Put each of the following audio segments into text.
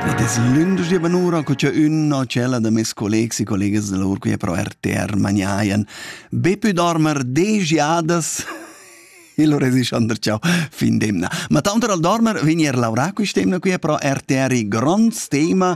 Ed es lündeschia banura co cha ün o tschella da meis collegs e collegas da lur quia pro RTR magnajan be pü dormer desch jadas e lur es Sander Ciao fin d'emna. Ma tanter al dormer vegn eir laurà quist'emna quia pro RTR il grond tema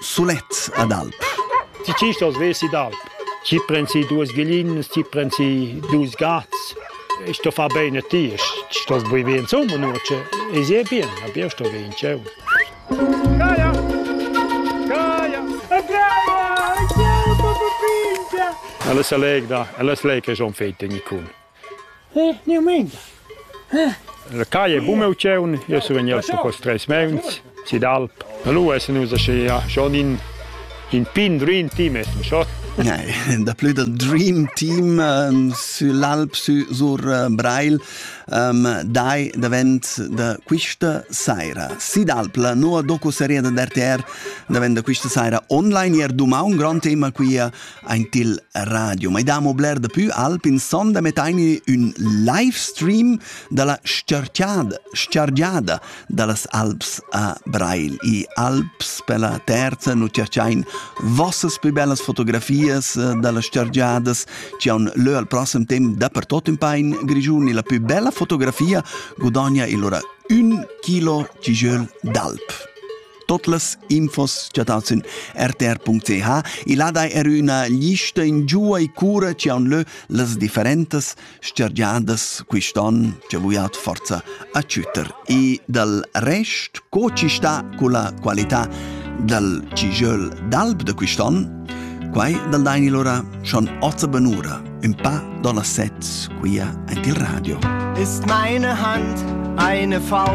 Sulet ad alp. Ti chistas vesi d'alp. Ti prends si duas glinas, ti prends si dus gats. E sto far bene a ti. Stos bui bien insomma, nu? E si è bien, abbiamo sto bien, ciao. Gaia! Gaia! Gaia! Ella se legda, ella se lega schon fete, Nicun. La caia è buna opziun, jeu sun vegnius per quests treis meuns sid alp. E lu essan nus aschia schon in, in pin dream team essan schon. Nei, daplü da Dream Team um, sü l'Alp sü sur uh, Breil um, dai davent da quista saira. Sidalpla, nova docu-serie da RTR davent da quista saira online. Ier dumà un grand tema qui a Ein til radio. Ma damo bler da più alp in sonda mettaini ün live stream dalla scerchiada, scergiada dallas Alps a Breil. I Alps per la terza nu cerchain vossas più bellas fotografias eh, dalla scergiadas ci on lö al prossim temp dappertut in pain Grigiun e la più bella fotografia gudogna il ora un kilo ci jöl d'alp. Tot las infos cha dat sün rtr.ch il ha dai er üna lista in giua e cura chi haun lö las differentas stergiadas quist'on cha vuiat forza acütter. E dal rest, co ci sta culla qualità dal cijöl d'alb da quist'on? Quai dal daini lura schon ozza benura, ün pa do las set quia ant il radio. Ist meine Hand eine Faust?